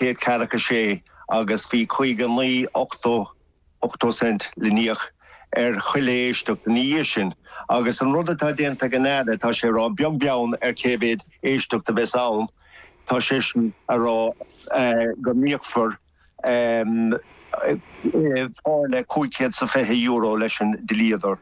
chéad ceathracha a sé agus bhí cúig nó naoi, ochtó, ochtó cent le n-íoc ar chuile éisteacht ina dhiaidh sin. Agus an rud atá déanta ag an Aire, tá sé ag rá beag beann ar cé mhéad éisteacht a bheas ann, tá seisean ag rá go n-íocfar táille cúig chéad sa fiche euro leis an dlíodóir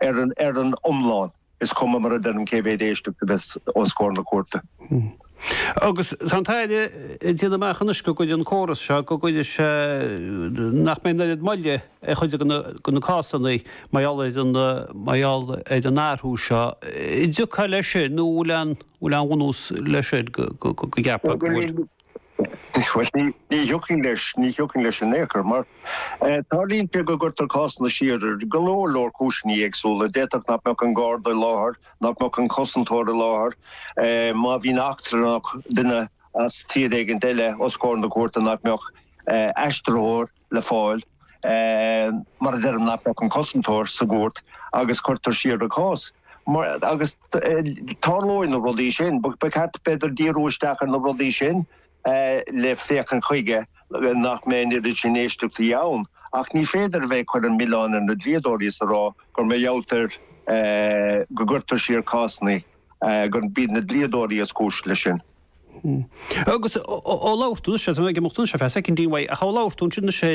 ar an iomlán. Is cuma mar a deirim cé mhéad éisteacht a bheas os comhair na cúirte. Agus tá an tAire ag déanamh amach anois go gcuirfidh an córas seo, go gcuirfidh sé, nach mbeidh an oiread moille ar chuid de na cásanna mar gheall ar an, mar gheall ar an athrú seo. An dtiocfá leis sin nó an bhfuil aon bhunús leis sin go gceapfá go bhfuil? Bhuel, ní thiocfainn leis, ní thiocfainn leis in aon chor, mar tarlaíonn sé go gcuirtear cásanna siar ar go leor leor cúiseannaí éagsúla. D'fhéadfadh nach mbeadh an Garda i láthair, nach mbeadh an cosantóir i láthair, má bhíonn eachtrannach, duine as tír éigin eile os comhair na cúirte nach mbeadh aistritheoir, le fáil mar a deirim éagaoineach an cosantóir sa gcúirt agus cuirtear siar an cás. Agus tarlóidh na rudaí sin, ba cheart b'fhéidir díriú isteach ar na rudaí sin le féachaint chuige nach mbeidh an oiread sin éisteachtaí ann. Ach ní féidir a bheith ag cur an mhilleáin ar na dlíodóirí is a rá gur mar gheall orthu go gcuirtear siar cásanna gurb iad na dlíodóirí is cúis leis sin. Agus ó labhair tú, sé, tá mé ag imeacht anois ar feadh soicind amháin uaidh, ach ó labhair tú ansin, sé,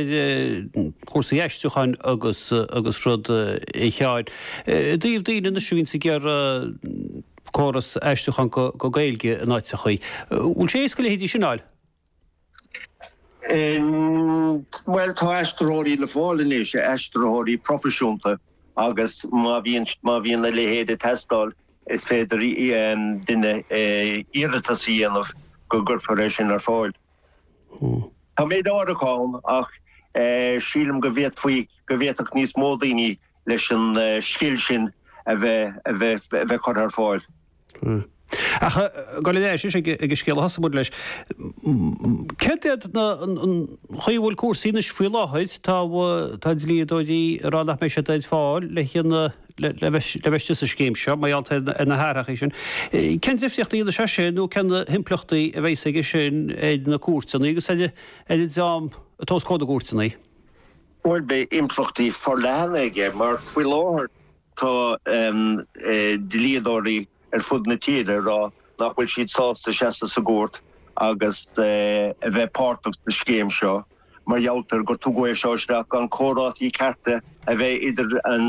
cúrsaí aistriúcháin agus agus rud a Sheáin, i dtaobh daoine anois a bhíonn ag iarraidh córas aistriúchán go Gaeilge in áiteachaí, bhfuil sé éasca a leithéidí sin a fháil? Bhuel, tá aistritheoirí le fáil anois, aistritheoirí proifisiúnta, agus má bhíonn, má bhíonn a leithéid ag teastáil, is féidir duine iarratas a dhéanamh go gcuirfear é sin ar fáil. Tá méid áirithe ann ach sílim go bhféadfaí, go bhféadfadh níos mó daoine leis an scil sin a bheith curtha ar fáil. Ach ag goil ar ais ag an scéal a thosaigh muid leis, céard é an chaoi a bhfuil cúrsaí anois faoi láthair? Tá dlíodóirí ag rá nach mbeidh siad ar fáil le bheith le bheith istigh sa scéim seo, mar gheall ar na hathrachaí sin. Cén difríocht a dhéanfas sé sin nó cén himpleachtaí a bheas aige sin ar na cúirteanna agus ar an dream atá os comhair na gcúirteanna? Bhuel, beidh impleachtaí forleathana aige mar faoi láthair tá dlíodóirí ar fud na tíre ag rá nach bhfuil siad sásta seasamh sa gcúirt agus a bheith páirteach sa scéim seo mar gheall ar gur tugadh é seo isteach gan comhráití cearta a bheith idir an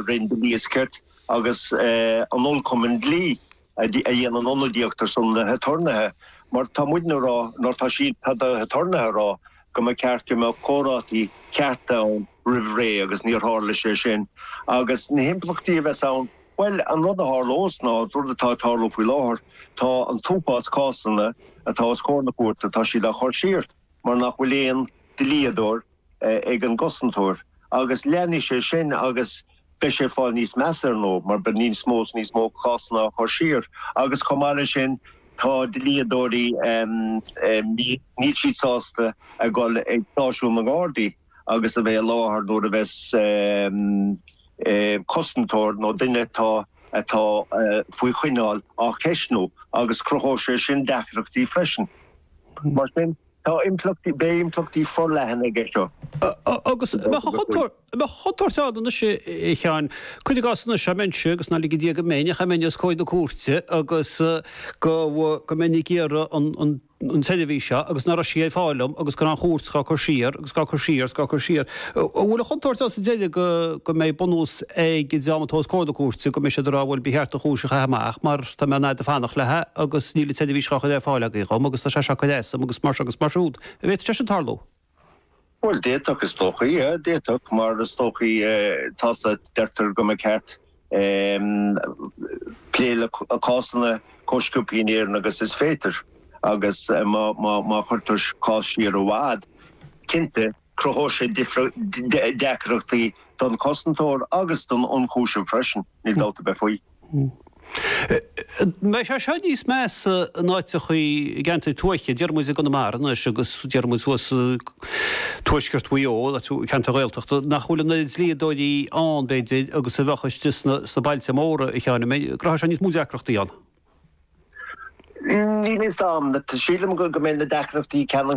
Roinn Dlí is Cirt agus an Dlí-Chumann Dlí. a dhéanann ionadaíocht ar son na haturnaetha, mar tá muidne a rá nó tá siad, tá na haturnaetha a rá go mba ceart go mbeadh comhráití cearta ann roimh ré agus níor tharla sé sin. Agus na himpleachtaí a bheas ann, bhuel, an rud a tharlós ná an rud atá ag tarlú faoi láthair, tá an t-uafás cásanna atá os comhair na cúirte, tá siad á chur siar mar nach bhfuil aon dlíodóir, ag an gcosantóir agus leanfaidh sé sin agus beidh sé ag fáil níos measa ar ndóigh mar beidh níos mó is níos mó cásanna á chur siar agus chomh maith leis sin tá dlíodóirí, níl siad sásta a dhul ag stáisiún na nGardaí agus a bheith i láthair nuair a bheas cosantóir nó duine atá atá faoi choinneáil á cheistniú agus cruthóidh sé sin deacrachtaí freisin. Mar sin, Tá impleachtaí, beidh impleachtaí forleathan aige seo. Agus bheadh an chontúirt, bheadh an chontúirt ann anois, a Sheáin, cuir i gcás anois dá mbeinnse, agus nár lige Dia go mbeinn, ach dá mbeinn os comhair na cúirte, agus go, go mbeinn ag iarraidh an, an, an tseirbhís seo, agus ná raibh sí ar fáil dhom, agus go raibh an chúirt dhá cur siar, agus. is dhá cur siar is dhá cur siar. An bhfuil an chontúirt ann sa deireadh go mbeidh bunús ag an dream atá os comhair na cúirte go mbeidh siad ag rá bhuel ba cheart an chúis a chaitheamh amach mar tá mé an fhad ag fanacht leis agus níl an tseirbhís dhá cur ar fáil agaibh dhom agus tá sé seo ag cur as dom agus mar seo agus mar siúd. An bhféadfadh sé sin tarlú? Bhuel d'fhéadfadh is dócha é, d'fhéadfadh mar is dócha tá sa deirtear go mba cheart plé le cásanna chomh sciobtha in Éirinn agus is féidir agus má chuirtear cás siar i bhfad, cinnte, cruthóidh sé deacrachtaí don chosantóir agus don ionchúiseamh freisin, níl dabht ar bith faoi. Beidh sé seo níos measa in áiteachaí, i gceantair tuaithe, deir muid i gConamara anois agus deir muid thuas i. Tuaisceart Mhaigh Eo, ceantair Ghaeltachta nach bhfuil an oiread dlíodóirí ann, b'fhéidir, agus a bheadh istigh sna bailte móra, a Sheáin. An mbeidh, an gcruthóidh sé níos mó deacrachtaí ann? Níl a fhios a'm. Sílim go mbeidh na deacrachtaí ceannann.